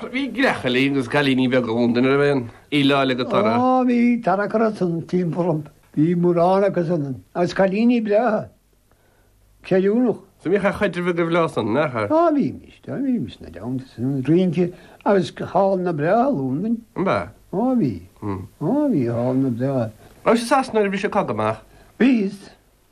Bhí gearrchailí agus cailíní beaga i Londain, an raibh aon fhilleadh eile go Tara? Ó, bhí Tara curtha san timpeall an. Bhí mórán acu san, agus cailíní breátha, ceiliúnach. So bhíodh caidreamh agaibh leo san, nach? Ó, bhímis, do bhímis sna dánta san, rince agus hallanna breátha i Londain. Ab ea? Ó, bhí. Ó, bhí hallanna breátha. Rabhais i Sasana nuair a bhí an cogadh amach? Bhíos.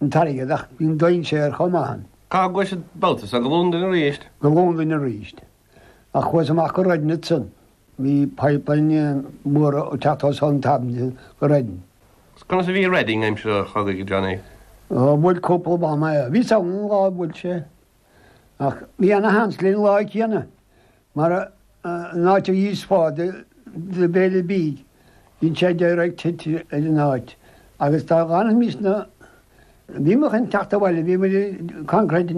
an t-airgead ach bhí an dainséar chomh maith ann. Cá gcuais an babhta so? Go Londain arís? Go Londain arís. Ach chuas amach go Reading ansan. Bhí pipeline mór ag teacht os cionn Thameside go Reading. Conas a bhí Reading aimsir an chogaidh, a Johnny? Ó, bhuail cúpla bomb é. Bhíos ann an lá a bhuail sé. Ach bhí ana-sheans linn an lá céanna. Mar an áit níos faide do béile bídh, bíonn sé direct hit ar an áit agus dá bhfanfaimís na Bhíomair chun teacht abhaile, bhíomair concrete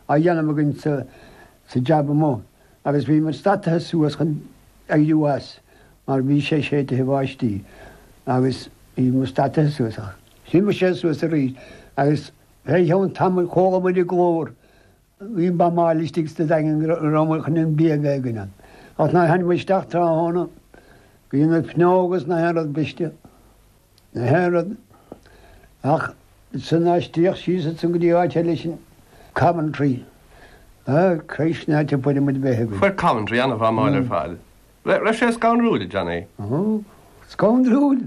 á dhéanamh againn sa jab amuigh agus bhíomair stadtaithe suas chun éirí as mar bhí sé séidtithe báistí agus bhíomair stadtaithe suas ach shuigh muid siar suas arís agus fé cheann tamaill, chualamair glór Bhí bombáil istigh sna daingin go raibh an chnoic bíog éigin ann. Ach nuair a thánamair isteach tráthnóna, bhí na fuinneoga is gach aon rud briste, gach aon rud ach ansan aistríodh síos ansan go dtí áit eile sinn, Coventry. Á, Christ, ná te fuair muid breith againn. Fuair Coventry ana-bhombáil ar fad. Raibh sé scanrúil, a Johnny. Ó, scanrúil!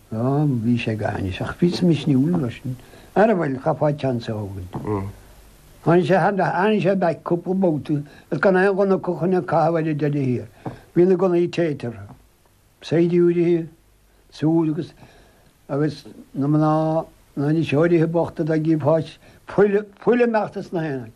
Ó, bhí sé go hainnis, ach bhí sé misniúil, mar sin. Ara bhuel, chaithfeá seans a thógaint. Tháinig sé thar n-ais, tháinig sé back cúpla babhta, agus gan aon ghunna acu chun a chaitheamh air ar deireadh thiar. Bhí na gunnaí téite orthu. Saighdiúirí súl agus, agus na mná, na n-iriseoirí bochta dá gcífeá fuil, fuil ag imeacht as gach aon áit.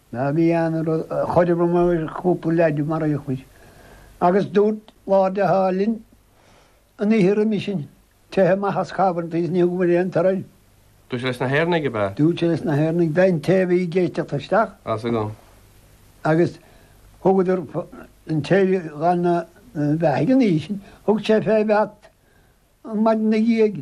Ná bí ag caint, chuireamair cúpla leaid mar aoí chuir, agus dúirt Lord Haw-Haw linn an oíche roimis sin, Teith amach as Coventry is ní thugann muid aon torainn. Dúirt sé leis na hÉireannaigh ab ea? Dúirt sé leis na hÉireannaigh teitheadh, an té a bhí ag éisteacht isteach. As agam. Agus thugadar an té a ghabh na beathaigh an oíche sin, thug sé fé bheat an mhaidin ag iéigh.